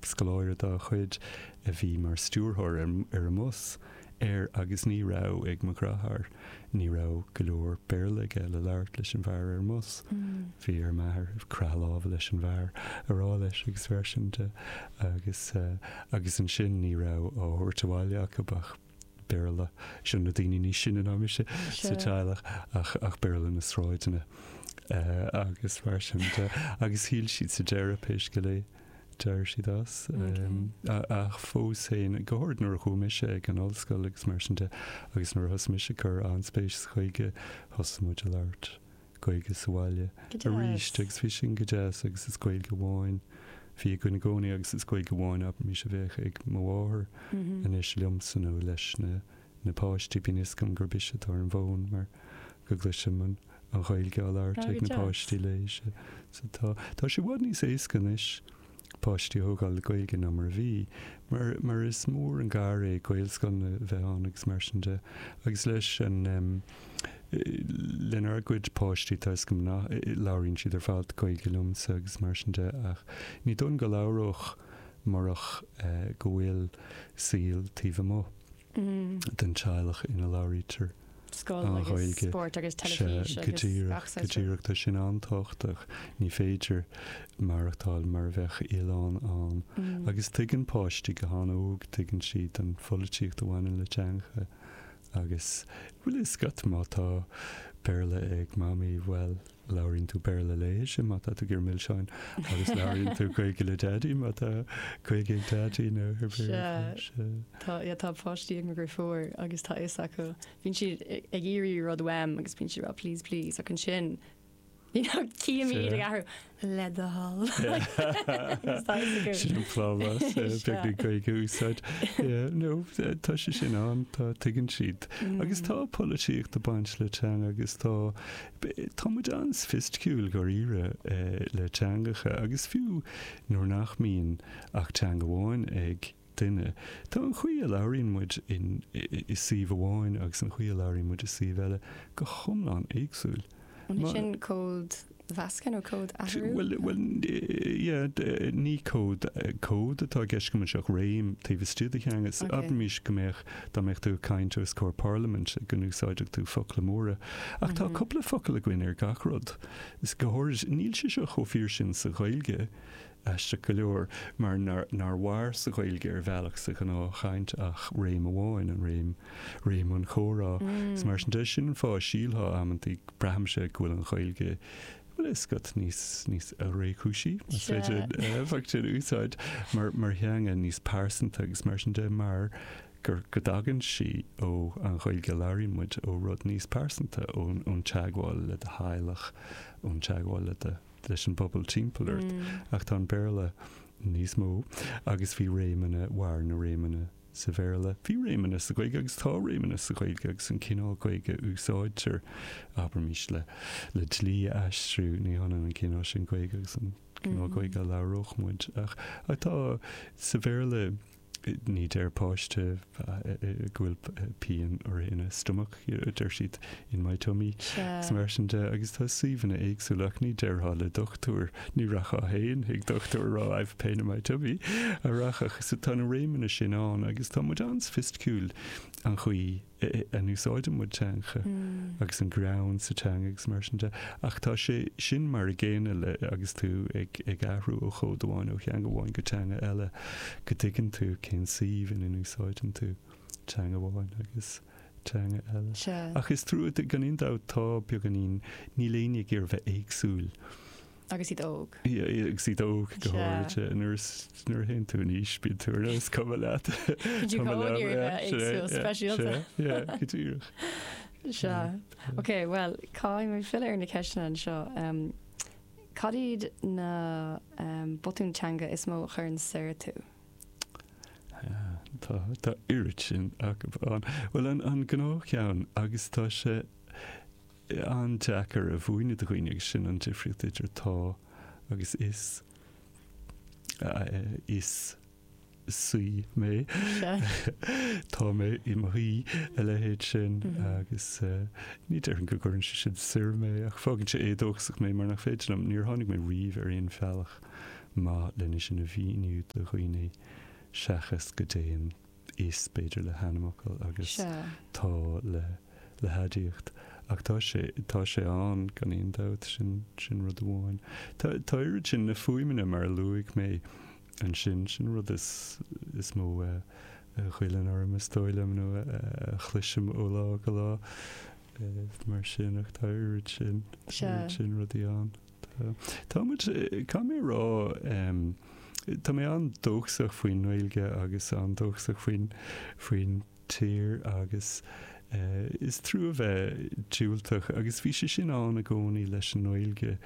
Scoláire dá chuid a bhí mar stiúrthóir ar an mbus, ar, agus ní raibh ag mo dhreatháir. Ní raibh go leor Béarla aige le labhairt leis an bhfear ar an mbus. Bhí ar m'athair croitheadh láimhe leis an bhfear, a rá leis agus mar sin de, agus, agus ansin ní raibh á thabhairt abhaile acu ach. Béarla. Seo na daoine níos sine ná mise sa teaghlach ach ach Béarla na sráideanna agus mar sin de. Agus shocraigh siad sa deireadh pé scéal é d'éirigh siad as. Ach fós féin, go háirid nuair a chuaigh mise ag an ollscoil agus mar sin de agus nuair a thosaigh mise ag cur an-spéis sa Ghaeilge, thosaigh muid ag labhairt Gaeilge sa bhaile arís agus bhí sin go deas agus is Gaeilge amháin a bhí againn i gcónaí agus is Gaeilge amháin abraimis a bheadh ag mo mháthair anois liomsa nó leis na páistí. Bíonn a fhios agam gurb ise atá ar an bhfón mar go gcloisim an Ghaeilge á labhairt ag na páistí léi. Tá sé i bhfad níos éasca anois. páistí a thógáil le Gaeilge ná mar a bhí, mar mar is mór an gar é Gaelscoileanna a bheith ann agus mar sin de. Agus leis an em. lenár gcuid páistí tá a fhios go maith labhraíonn siad ar fad Gaeilge liomsa agus mar sin de ach ní dóigh liom go labhródh murach eh go bhfuil saol taobh amuigh. den teaghlach ina labhraítear an Ghaeilge. Sea, go díreach, go díreach. Tá sin an-tábhachtach. Ní féidir maireachtáil mar a bheadh oileán ann. Agus tuigeann páistí go han-óg, tuigeann siad an pholaitíocht a bhaineann le teangacha. Agus, bhuel, tá a fhios agat má tá Béarla ag Mamaí, bhuel, Labhraíonn tú Béarla léise má tá tú ag iarraidh milseáin agus labhraíonn tú Gaeilge le Daidí má tá Gaeilge ag Daidí nó ar Béarla. Sea, tá páistí agam a gcroí fuar agus tá a fhios acu. Bíonn siad ag iarraidh rud uaim agus bíonn siad ag rá please, please ach ansin you know cífidh mé iad ag athrú le do thoil. Sin an plámás beag na Gaeilge a úsáid. No, tá sé sin ann, tá, tuigeann siad. Agus tá polaitíocht ag baint le teanga agus tá Tá muid an-soifisticiúil, dháiríre, le teangacha, agus fiú nuair nach mbíonn ach teanga amháin ag duine, tá an chaoi a labhraíonn muid i suíomh amháin agus an chaoi a labhraíonn muid i suíomh eile go hiomlán éagsúil. An é sin códmheascadh nó códathrú? Bhuel, ní cód atá i gceist agam anseo ach réim taobh istigh de theanga. Abraimis go mbeadh Dá mbeadh tú ag caint os comhair parlaimint, go n-úsáidfeadh tú focla móra. Ach tá cúpla focal againn ar gach rud. Is go háirid, níl sé seo chomh fíor sin sa Ghaeilge, aisteach go leor, mar nár mhair sa Ghaeilge ar bhealach sa ghnáthchaint ach réim amháin, an réim, réim an chomhrá. Is mar sin de, sin an fáth a sílfeá amantaí, braithimse, go bhfuil an Ghaeilge, Bhuel, is scáth níos, níos réchúisí, más féidir an focal sin a úsáid, mar, mar theanga, níos pearsanta agus mar sin de, mar gur, go dtagann sí ó an Ghaeilge a labhraíonn muid, ó rud níos pearsanta, ón, ón teagmháil le do theaghlach, ón teagmháil le do, leis an bpobal timpeall ort. Ach tá an Béarla níos mó agus bhí réimeanna, mhair na réimeanna. sa Bhéarla. Bhí réimeanna sa Ghaeilge agus tá réimeanna sa Ghaeilge agus an cineál Gaeilge a úsáidtear, abraimis, le le dlí a aistriú, ní hionann an cineál sin Gaeilge agus an cineál Gaeilge a labhródh muid. Ach ach tá, sa Bhéarla, ní deir páiste go bhfuil pian uirthi ina stomach. deir siad, in my tummy, is mar sin de, agus tá suíomhanna éagsúla, ach ní déarfá le dochtúir, ní rachfá féin chuig dochtúir a rá I have pain in my tummy, a rachadh, so tá na réimeanna sin ann agus tá muid an-soifisticiúil an chaoi a n-úsáideann muid teanga agus an greann sa teanga agus mar sin de, ach tá sé sin mar a gcéanna le, agus tú ag athrú ó chód amháin, ó theanga amháin go teanga eile, go dtuigeann tú cén suíomh ina n-úsáideann tú teanga amháin agus. teanga eile. Ach is trua, gan aon dabht, tá beagáinín, níl éinne ag iarraidh bheith éagsúil. Agus iad óg. Agus iad óg, go háirithe. Nuair is, nuair a théann tú in aois, bíonn tú ar nós, is cuma leat. Tá tú ag iarraidh bheith éagsúil, speisialta. Sea, go díreach. Sea. Ok, bhuel, caithfidh mé filleadh ar na ceisteanna anseo. Cad iad na botúin teanga is mó a chuireann soir tú? Tá, tá oiread sin acu ann. Bhuel, an, an gnáthcheann, agus tá sé an-deacair a mhúineadh do dhaoine, agus sin an difríocht idir tá agus is, is saoi mé, tá mé i mo shuí, a leithéid sin, agus ní déarfainn go gcuireann sé sin soir mé, ach fágann sé éadóchasach mé, mar nach féidir liom, níor tháinig mé riamh ar aon bhealach. maith lena sin a mhíniú do dhaoine seachas go dtéann is, b'fhéidir, le hainmfhocal agus tá le haidiacht. Ach tá sé, tá sé ann, gan aon dabht, sin, sin rud amháin. Tá, tá oiread sin na fuaimeanna, mar a luaigh mé ansin, sin an rud is, is mó a ghoilleann orm, is dóigh liom, nó a chloisim ó lá go lá, mar sin, ach tá oiread sin, oiread sin rudaí ann. Tá. Tá muid, caithfidh mé a rá, tá mé an-dóchasach faoin nGaeilge agus an-dóchasach faoin, faoin tír agus is trua a bheith diúltach agus bhí sé sin ann i gcónaí leis an nGaeilge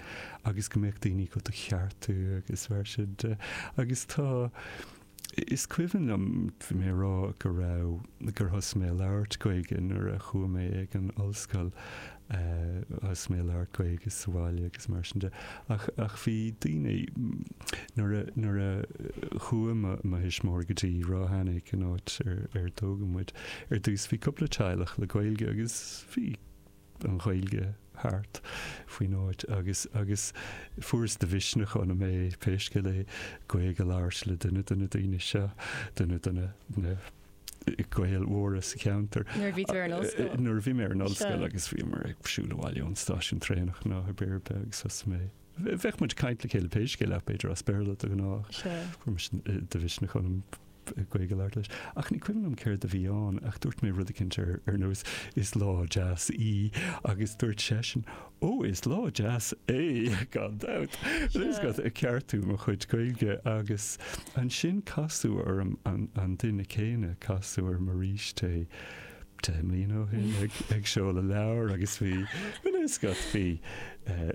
agus go mbeadh daoine ag do cheartú agus bheadh siad, agus tá, Is cuimhin liom mé a rá go raibh, gur thosaigh mé a labhairt Gaeilge nuair a chuaigh mé chuig an ollscoil, thosaigh mé a labhairt Gaeilge sa bhaile agus mar sin de. Ach bhí daoine, nuair a chuaigh mo thuismitheoirí go dtí Ráth Eanaigh, an áit ar tógadh muid, ar dtús bhí cúpla teaghlach le Gaeilge agus bhí, an Ghaeilge thart faoin áit agus agus fuaireas de mhisneach ionam pé scéal é Gaeilge a labhairt le duine de na daoine seo, duine de na na Gaeil mhóra sa cheantar. Nuair a bhí tú ar an ollscoil. Nuair a bhí mé ar an ollscoil Sure. agus bhíomar ag siúl abhaile ón stáisiún traenach nó ar bith ar bith agus thosaigh mé, bheadh muid ag caint le chéile pé scéal ach b'fhéidir as Béarla de ghnáth, Sure. fuaireas de mhisneach ionam. Gaeilge a labhairt leis. Ach ní cuimhin liom céard a bhí ann, ach dúirt mé rud éigint ar nós, Is lá deas í, agus dúirt seisean, Ó, is lá deas é, gan dabht! Nós, ag ceartú mo chuid Gaeilge, agus ansin casadh orm an duine céanna, casadh orm arís é deich mbliana ó shin ag seoladh leabhar, agus bhí, nós, bhí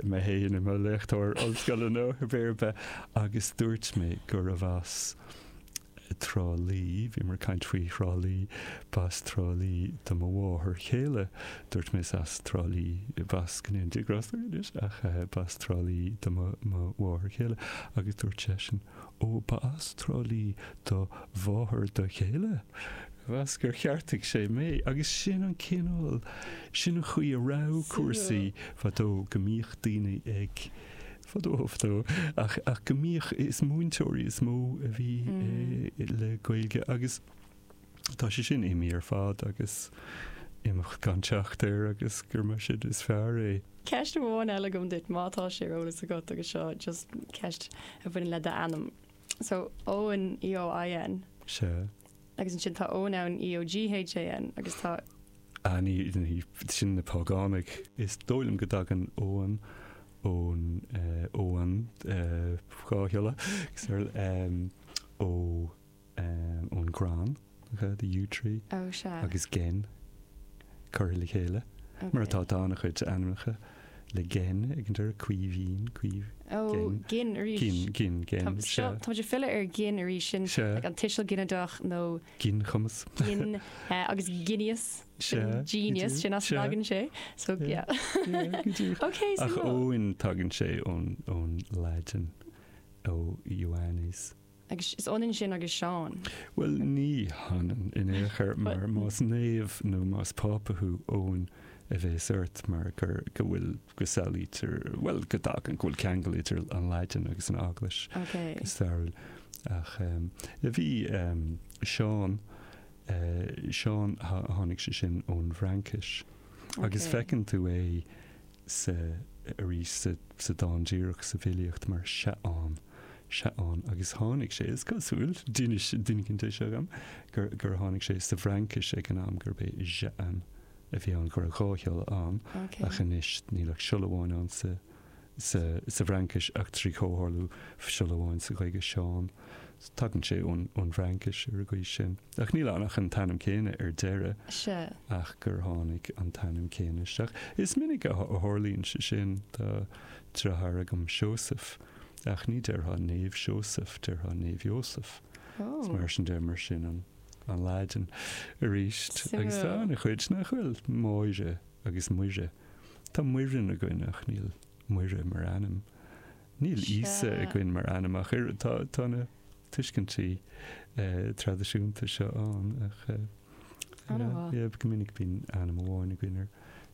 mé féin i mo léachtóir ollscoile, nó ar bith ar bith, agus dúirt mé gurbh as. Trá Lí, bhíomar ag caint faoi Thrá Lí, b'as Trá Lí do mo mháthair chéile, dúirt mise, as Trá Lí, b'as, go ndéana Dia grásta anois, ach b'as Trá Lí do mo mháthair chéile, agus dúirt seisean, ó, b'as Trá Lí do mháthair do chéile? Mheas gur cheartaigh sé mé, agus sin an cineál, sin an chaoi a raibh cúrsaí fadó, go mbíodh daoine ag. fadó ó fadó, ach go mbíodh, is múinteoirí is mó a bhí le Gaeilge agus tá sé sin imithe ar fad agus imeacht gan teacht air agus gura mar sin is fearr é. Ceist amháin eile agam duit, má tá sé ar eolas agat, agus seo just ceist a bhaineann le d'ainm. So Eoin, EOIN. Sea. Agus ansin tá Eoghan ann, EOGHAN, agus tá. Ah ní, sin na págánaigh. Is dóigh liom go dtagann Eoghan ón, Eoghan, dhá shiolla, ó, ón gcrann, the yew tree. Ó sea. Agus Gen, curtha le chéile. Mar atá, tá an-chuid ainmneacha. le gin ag an deireadh, Caoimhín, Caoimh, Ó, gin, gin arís. gin, gin, gin, Tá, seo, sea. táimid ag filleadh ar gin arís, sin Sea. ag an tuiseal ginideach nó Ginchumas. gin, eh, agus genius, sin Sea, go genius, deo, sin as an sea. tagann sé, so, Sea. yeah. Sea, go deo. Ok, so Ach go. Eoin tagann sé ón, ón Laidin, ó Ioannis. Agus is ionann sin agus Seán. Bhuel, ní hionann in aon chor, mar más naomh nó más Pápa thú, Eoin a bhéas ort, mar go, go bhfuil, go samhlaítear, bhuel, go dtagann, go bhfuil ceangal idir an Laidin agus an Eaglais go stairiúil. Ach bhí Seán, Seán, tháinig sé sin ón bhFraincis. Agus feiceann tú é, sa, arís sa, sa dán díreach sa bhfilíocht mar Seán, Seán, agus tháinig sé, is cosúil, d'inis, d'inis sé seo dhom, gur, gur tháinig sé sa bhFraincis ag an am, gurb é Jean a bhí ann, go raibh dhá shiolla ann, ach anois níl ach siolla amháin ann sa, sa, sa bhFraincis, ach trí chomhtharlú, siolla amháin sa Ghaeilge, Seán. Tagann sé ón, ón bhFraincis ar an gcaoi sin. Ach níl ann ach an t-ainm céanna ar deireadh. Sea. Ach gur tháinig an t-ainm céanna isteach. Is minic a tharlaíonn sé sin. Tá deartháir agam, Seosamh. Ach ní déarfá Naomh Seosamh, déarfá Naomh Iósaf. Is mar sin de, mar sin an Laidin aríst. Agus tá an-chuid, nach bhfuil? Máire agus Muire. Tá Muireann againn ach níl Muire mar ainm. Níl Íosa againn mar ainm ach oiread. Tá na. tuiscintí traidisiúnta seo ann ach go minic bíonn ainm amháin againn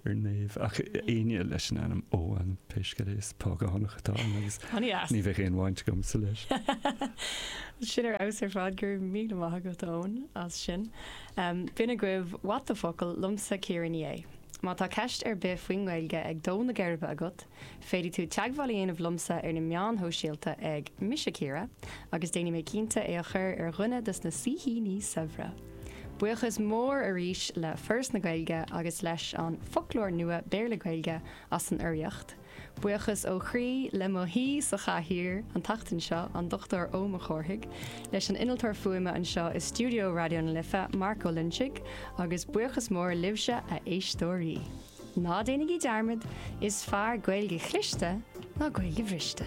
ar naomh ach éinne leis an ainm Eoin pé scéal é is págánach atá ann agus ní bheadh aon bhaint agamsa leis. Sin ar fheabhas ar fad, go raibh míle maith agat Eoin as sin. B'in agaibh What the Focal liomsa Ciara Ní É. Má tá ceist ar bith faoin nGaeilge ag dó na geirbe agat, Féadfaidh tú teagmháil a dhéanamh liomsa ar na meáin shóisialta ag, Mise Ciara, agus déanfaidh mé cinnte é a chur ar dhuine dos na saoithíní saibhre! Buíochas mór arís le Foras na Gaeilge agus leis an Foclóir Nua Béarla-Gaeilge as an urraíocht. Buíochas ó chroí le mo shaoi sa chathaoir an tseachtain seo, an Dr Eoin Mac Cárthaigh, leis an Innealtóir Fuaime anseo i stiúideo Raidió na Life, Mark Ó Loinsigh, agus buíochas mór libhse, a éisteoirí! Ná déanaigí dearmad, is fearr Gaeilge chliste ná Gaeilge bhriste.